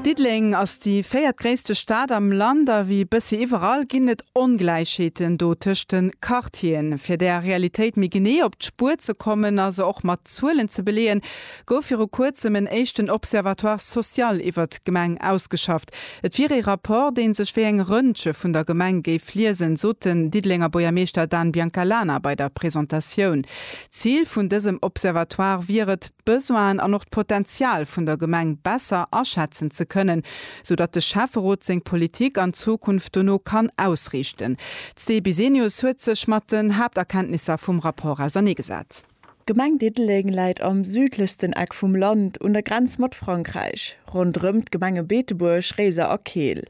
Diddeleng ass déi véiertgréisste Stad am Land a wéi bëssi iwwerall ginn et Ongläichheeten do tëscht de Quartieren. Fir där Realitéit méi genee op d'Spuer ze kommen a se och mat Zuelen ze beleeën, gouf viru kuerzem en éischten Observatoire social iwwert d'Gemeng ausgeschafft. Et wier ee Rapport, dee sech wéi eng Röntge vun der Gemeng géif liesen, sot den Diddelenger Buergermeeschter Dan Biancalana bei der Presentatioun. D'Zil vun dësem Observatoire wier et, d'Besoinen an och d'Potenzial vun der Gemeng besser aschätzen ze kënnen, sou datt de Schäfferot seng Politik an Zukunft dono kann ausriichten. D'Sti Bisenius huet sech mat den Haapterkenntnisser vum Rapport auserneegesat. D'Gemeng Diddeleng läit am südlechsten Eck vum Land un der Grenz mat Frankräich, ronderëm d'Gemenge Beetebuerg, Réiser a Keel.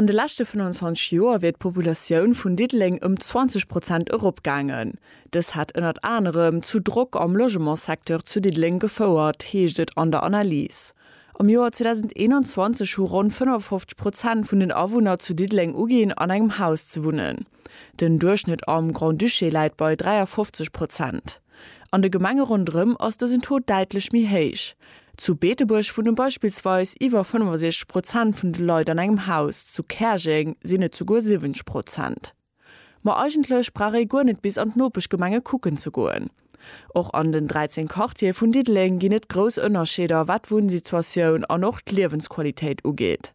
An de leschte 25 Joer wier d'Populatioun vun Diddeleng ëm 20 Prozent eropgaangen. Dës hätt ënnert anerem zu Drock am Logementssecteur zu Diddeleng gefouert, heescht et an der Analys. Am Joer 2021 hu ronn 55 Prozent vun den Awunner zu Diddeleng uginn, an engem Haus ze wunnen. Den Duerchschnëtt am Grand-Duché läit bei 53 Prozent. An de Gemenge ronderëm ass dësen Taux däitlech méi héich. Zu Beetebuerg wunne beispillsweis iwwer 65 Prozent vun de Leit an engem Haus, zu Käerjeng sinn et souguer 70 Prozent. Ma eigentlech brauch ee guer net bis an d'Nopeschgemenge kucken ze goen. Och an den 13 Quartiere vun Diddeleng ginn et grouss Ënnerscheeder, wat d'Wunnsituatioun an och d'Liewensqualitéit ugeet.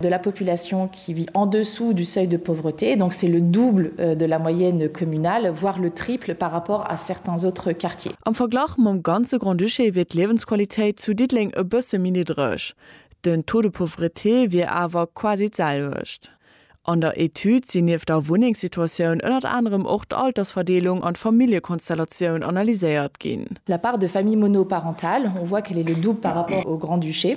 de la population qui vit en dessous du seuil de pauvreté, donc c'est le double de la moyenne communale, voire le triple par rapport à certains autres quartiers. Am Verglach mam ganze Grand-Duché wier d'Liewensqualitéit zu Diddeleng e bësse méi niddreg, den Taux de pauvreté wier awer quasi d'selwecht. An der Etüd sinn nieft der Wunnengssituatioun ënnert anerem och d'Altersverdeelung an d'Familljekonstellatioun analyséiert ginn. La part de familles monoparentales, on voit qu'elle est le double par rapport au Grand-Duché.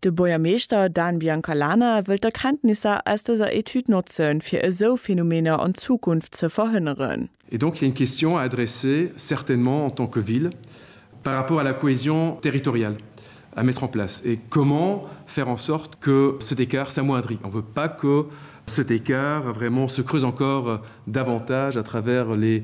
De Buergermeeschter Dan Biancalana wëllt d'Erkenntnisser aus dëser Etüd notzen, fir esou Phänomener an Zukunft ze verhënneren. Et donc il y a une question à adresser, certainement en tant que ville, par rapport à la cohésion territoriale à mettre en place et comment faire en sorte que cet écart s'amoindrit. On ne veut pas que cet écart vraiment se creuse encore davantage à travers les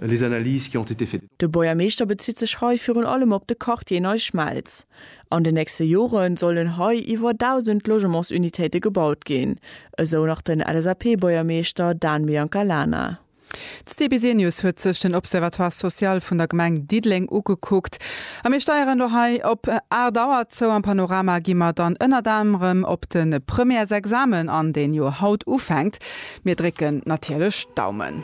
les analyses qui ont été faites. De Buergermeeschter bezitt sech hei virun allem op de Quartier Nei Schmelz. An den nächste Jore sollen hei iwwer 1.000 Logementsunitéite gebaut ginn, esou nach den LSAP-Buergermeeschter Dan Biancalana. D'Dbc News huet sech den Observatoire social vun der Gemeng Diddeleng ugekuckt a mir steieren elo hei op 8 Auer zou. Am Panorama gi mer dann ënnert anerem op de Premièresexamen an, deen jo haut ufänkt. Mir drécken natierlech d'Daumen.